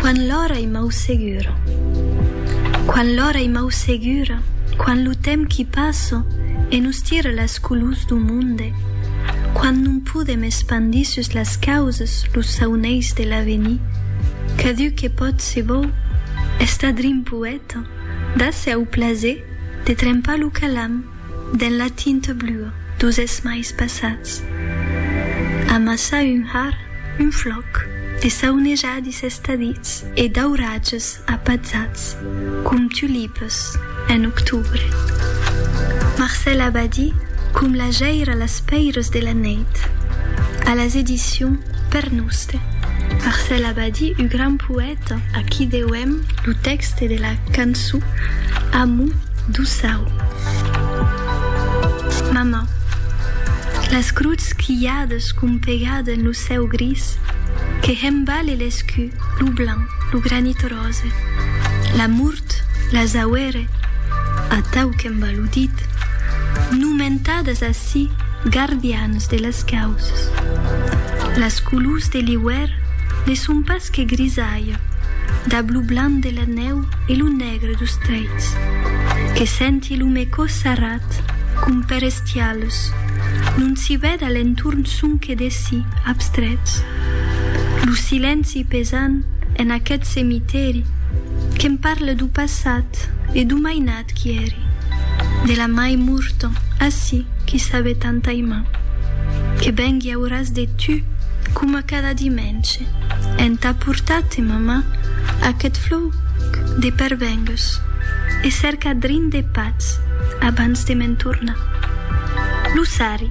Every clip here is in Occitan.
Quan l'ora i mau segura Quan l'ora i mau segura Quan lo temps qui passa e nos tira las colors du monde Quan non podem espandir sus las causas los sauneis de l'avenir Cadun que pòt se vòu estar drin poèta Dase au plaser de trempar lo calam Dens la tinta blua dos esmais passats. Amassar un har, un flòc, de saunejadis estadits e d'auratges apatzats com tulipes en octubre. Marcèl Abadí com la jaira las pèiras de la nèit. A las edicions Per Noste. Marcèl Abadí, ua gran poèta. Aquí deuem lo tèxte de la canço Amo do Sào. Mama, las cruts quilhades compegade en lo cèu gris que hembale l'escu, lo blanc, lo granit rose, la mort, las auere, atau qu'emba lo dit, nomentadas ací gardians de las causes, las colors de l'iuèr, Ne son pas que grisalha dab lo blanc de la nèu e lo negre dos treits que senti lo me cò sarrat com per estialhs non si vèd a l'entorn sonque de si abstrets lo silenci pesant en aqueth cemitèri que'm parle do passat e do mainatge Quieri, de la mai murton, assi qui sabe tant aimar, que vengui auras de tu, coma cada dimence, entà portar-te, mamà, aquest flòuc de pervengues, e cercar drin de patz abans de me'n tornar. Lo sarri,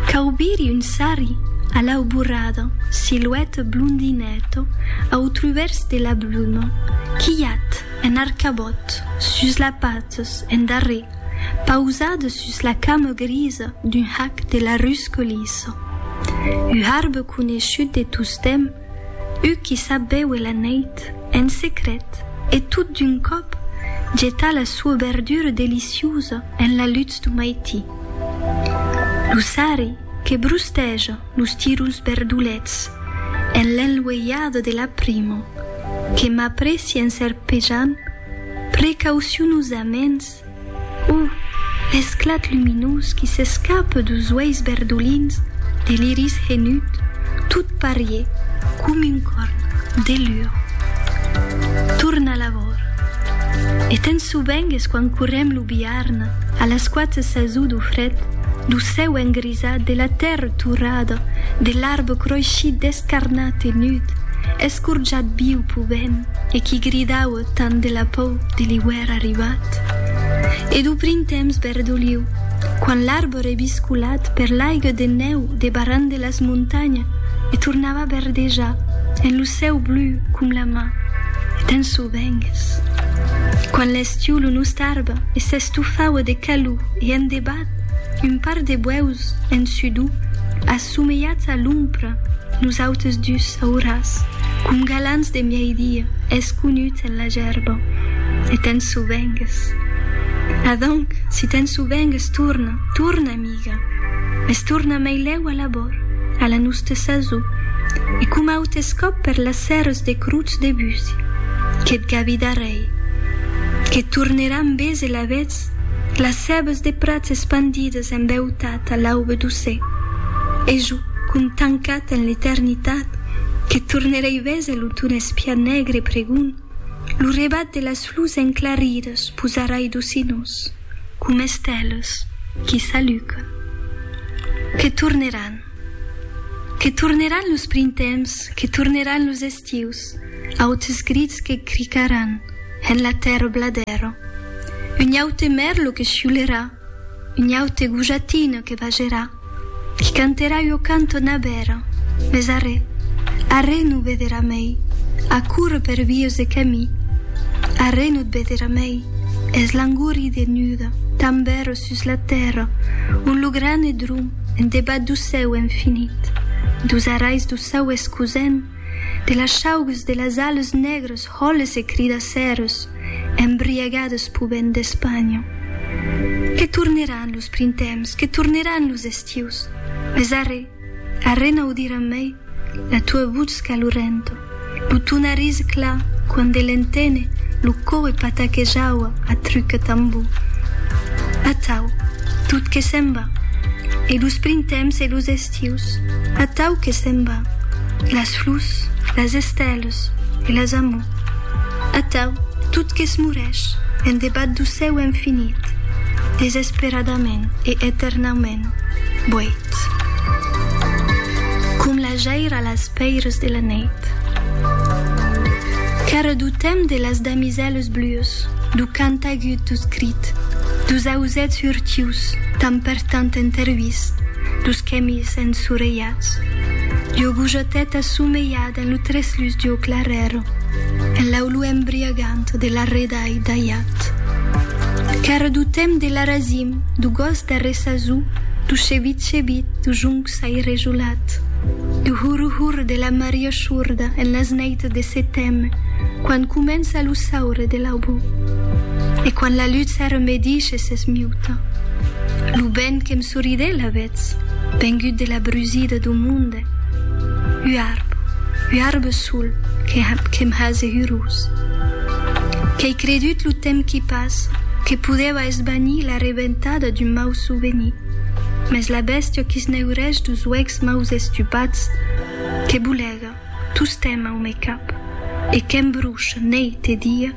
qu'aubiri un sarri a l'auborada, siluèt blondinèta au truvèrs de la bluma, quilhat! en arcabòt, sus las patas, en darrèr, pausada sus la cama grisa d'un hac de la rus Colissa. U arbre coneishut de tostemp, u qui sap béuer la neit, en secret, e tot d'un còp jetar la sua berdura deliciosa en la lutz du maití. Lo sari que brusteja. Los tiros berdolets en l'enlueiada de la primo que m'apressien serpejant precaucionosaments, o l'esclat luminós qui s'escape deus uèis berdolins de l'iris henut, tot parié com un corn de lur. Torna lavor. E tens sobengues quan correm lo biarn a las quatz sasut o fret do cèu engrisit, Esat de la tèrra torrada, de l'arbre croishit descarnat e nud, escorjat viu pau vent e qui gridaue tant de la pau de l'iuèr arribat e dau printemps verdoliu, quand l'arbre biscolat per l'aigue de nèu de barran de las montanhas e tornava verdejar en lo cèu blu com la man d'un sauvengues. Quand l'estiu lo nosta arbre e s'estofaue de calor e en debat, Un par de buèus en sudor assomelhats a l'ompra, nosautes dus auras, com galants de mièi-dia, esconuts en la gerba. E te'n sovengues. Adonc, si te'n sovengues, torna, torna, amiga, mès torna meilèu a l'abòrd, a la nosta sasor, e coma autes còps per las sèras de crotz de busi, que't gavi darrèir, que't tornerà ambés e lavetz Las cèbes de prats espandides en beutat a l'aube doce, e jo, com tancat en l'eternitat, que tornerei véser lo ton espiat negre pregon, lo rebat de las flors enclaridas posarai docinós, com estelas qui s'alucan. Que torneràn. Que torneràn los printemps, que torneràn los estius, Tius, autes grits que cricaràn en la tèrra bladèra, un aute mèrlo que chiulerà, un aute gojatina que vagerà, qui canterà ua canton abèra, mes arrè, arrè no vederà mei, a córrer per vies e camí, arrè no t vederà mei, es l'angori de nuda tanbèra sus la tèrra, ont lo gran e drum en debat du cèu infinit, dus arais du cèu escusèn, De las chaugues de las ales negres hòles e cridacèrs embriagades p'o vent d'Espanha. Que torneràn los printemps, que torneràn los estius, mes arrè, arrè n'audiràn mei la tua votz calorenta, lo ton arís clar quand de l'entene lo coe pataquejava a truc e tambor. Atau, tot que se'n va, e los printemps e los estius. estius, atau que se'n va, las flors, las estèlas e las amors, atau tot qu'esmorèsh en debat du cèu infinit, desesperadament e eternaument boit, com la jaire a las pèiras de la nèit. Qu'èra du temps de las damisèlas blues, du cant agut, du crit, dus ausèths hurtius, tan per Tant entervist, dus quèmis ensorelhats, ua gojateta somelhada en lo treslús d'ua clarèra, en l'aulor embriagant de l'arredai d'aiat. Qu'èra d'o temps de l'arasim, d'o gos d'arressasó, d'o chevit-chevit, d'o jonc çairejolat, d'o hurr-hurr de la maria chorda en las nèits de seteme, quan comença lo saure de l'aubor. E quan la lutz era medisha, Se s'esmiuta. Lo ben que'm soridè l'avetz vengut de la brusida do monde. U arb, u arb sol que que'm hase hurós. Qu'ei credut lo temps qui passa que podèva esvanir la rebentada d'un mau souvenir, mès la bèstia qui s'neurèsh dos uèchs maus estupats que bolega tostemp au me cap e que'm brucha neit e dia,